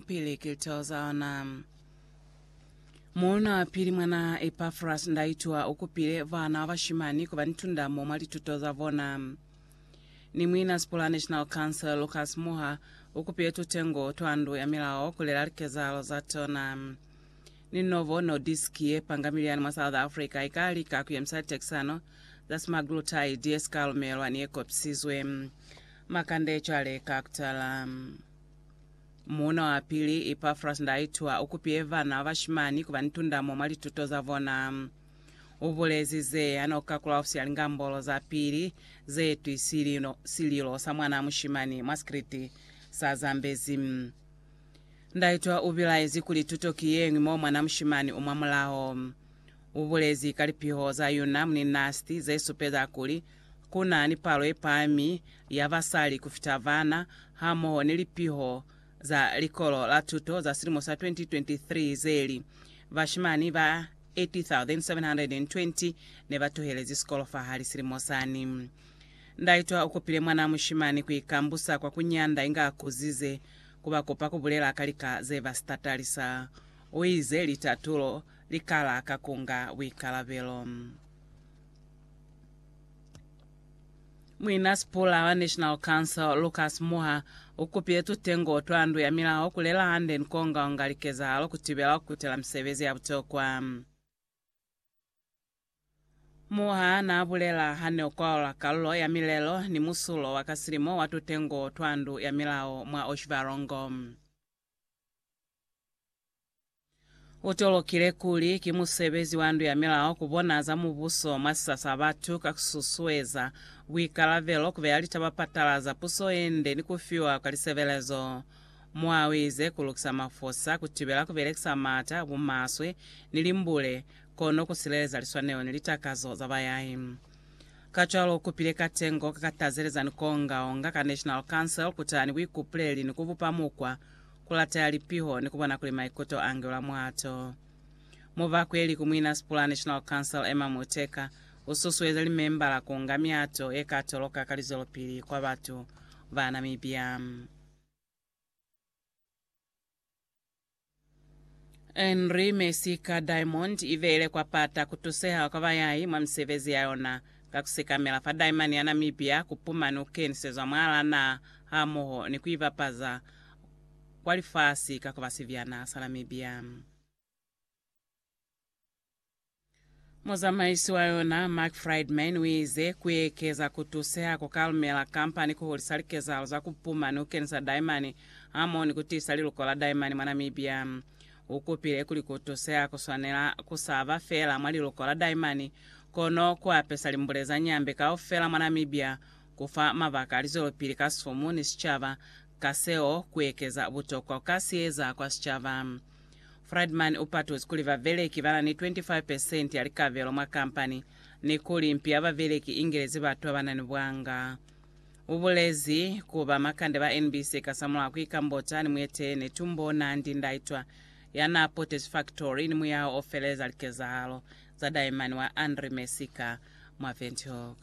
Pili kilito za ona. Mona pili mwana Epafras ndaitwa ukupile bana bashimani kuba ni tundamo mwa lituto za bona. Ni mwina Sipula National Council Lucas Muha ukupile tutengo twa ndu ya milao kulela likezahalo za tona. Ni Novo Nordisk ye panga miliani mwa South Africa ika lika kuyemisa litekisano za semaglutide ye sika lumelwa ni ye kopisizwe. Makande cwale ka kutala. Muuna wa pili, Epafras Ndaitwa, u kupile vana ba bashimani ku ba ni tundamo mwa lituto za bona. U bulezi ze ha no ka kula ofisi ya Lingambolo za Pili ze twi sililo, sililo sa mwana mushimani mwa sikriti sa Zambezi. Ndaitwa u bilaezi kuli tuto ki ye ñwi mo mwana mushimani u mwa mulaho. U bulezi ka lipiho za yuna Mninasti ze supeza kuli Ku na ni palo ye pami ya basali ku fita bana hamoho ni lipiho za Likolo la Tuto za silimo sa 2023 ze li, Bashimani ba 80,720 ne ba tuhelezi sikolo fahali silimo sani. Ndaitwa u kopile mwanaa mushimani ku ikambusa kwa ku nyanda inge a kuzize, ku ba kopa ku bulela ka lika ze ba si tatalisa. U ize litatulo li kala ka ku nga buikalabelo. Muina sipula wa National Council Lucas Muha ukupile tutengo twa ndu ya milaho kulela hande ni kuongaonga likezahalo kutibela kukutela misebezi ya butokwa. Muha naabulela hane ukwaula kalulo ya milelo ni musulo wa ka silimo wa tutengo twa ndu ya milaho mwa Oshivarongo. Utolokile kuli ki musebezi wa ndu ya milao kubona za mubuso mwa sisa sa batu ka kususueza buikalabelo, kubeya litaba patalaza puso yende ni kufiwa kwa lisebelezo. Mwa uize, Kulukisa mafosa, kutibela kubelekisa maata a bumaswe ni limbule, kono kusileleza liswanelo ni litakazo za bayai. Kacwalo ukupile katengo ka katazeleza ni kuonga-onga ka National Council kutaha ni buikupuleli ni kubupa mukwa, kulateya lipiho ni kubona kuli maikuto angelwa mwato. Mubakweli ku muinasipula wa National Council Emma Muteka ususueza limembala kuunga miato yekatoloka ka lizwelopili kwa batu ba Namibia. Henri mesi ka diamond i beile kwa pata ku tuseha kwa bayai mwa misebezi ya yona, ka ku sekamela fa daimani ya Namibia ku pumani u kenisezwa mwaalaa naha hamoho ni ku i bapaza kwa lifasi ka ku ba sibyana sa Namibia. Muzamaisi wa yona, Mark Friedman, uize, Kuekeza kutuseha kukalumela kampani kuhulisa likezahalo za kupuma ni kukenisa daimani hamoho ni kutiisa liluko la daimani mwa Namibia. Ukupile kuli kutuseha kuswanela kusaba feela mwa liluko la daimani, kono kuapesa limbule za Nyambe kaufela mwa Namibia, kufa mabaka a lizwelopili ka sumu ni sicaba, ka seo kuekeza butokwa kukasieza kwa sicaba. Friedman u patuzi kuli babeleki ba na ni 25 pesenti ya likabelo mwa kampani ni kuli mpi ya babeleki i ngelezi batu ba ba na ni bwanga. U bulezi ku ba makande ba NBC kasamulaho ku ikambota ni mueteleli ne tumbo Nandi Ndaitwah ya naa potezi faktori ni muyaho o feleza likezahalo za daemani wa Henri Messica mwa Windhoek.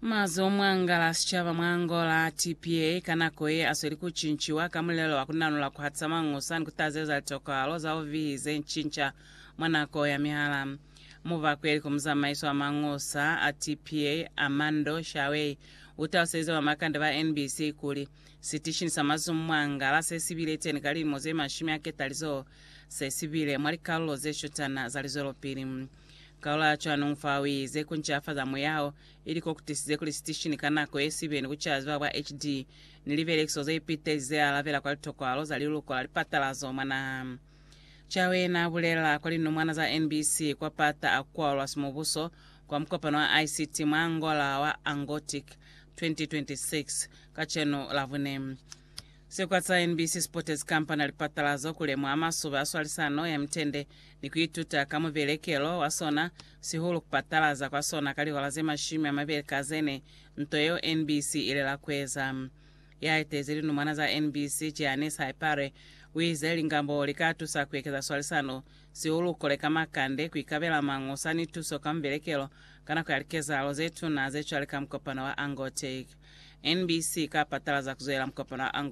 Mazi o mwangala sicaba mwa Angola, TPA, ka nako ye asweli ku cinciwa ka mulelo wa ku nanula ku hatisa mangusa ni ku tazeza litokalo za ovihi ze ncinca mwa nako ya mihala. Mubakweli ku muzamaiso wa mangusa a TPA, Armando Shawey, u taluselize bamakande ba NBC kuli, Sitishini sa mazi o mwangala se si bile teni ka lilimo ze mashumi a ketalizoho se si bile mwa likalulo ze shutana za lizwelopili. Kaula cwanong fa uize, Ku ncafaza muyao, ili ko kutisize kuli sitishini ka nako ye sibe ni kucala ziba bwa HD ni libelekiso ze ipitezi ze alabela kwa litokwalo za liluko la lipatalazo mwa naha. Chawe na bulela kwa linomwana za NBC kwa pata a kualwa simubuso kwa mukopano wa ICT mwa Angola wa Angotic 2026 kacenu Labune. Sikwa sa NBC si potezi kampani ya lipatalazo ku lemuha masube a swalisano ya mitende ni ku ituta ka mubelekelo wa sona, sihulu ku patalaza kwa sona ka lihora ze mashumi a mabeli ka ze ne, nto yeo NBC i lela ku eza. Ya etezi linumwana za NBC, Giannis Haipare, u ize lingabo li ka tusa ku ekeza swalisano, sihulu ku koleka makande, ku ikabela mañosa ni tuso ka mubelekelo ka nako ya likezahalo ze tuna ze cwale ka mukopano wa Angortec. NBC i ka patalaza ku zwelela mukopano wa Angortec.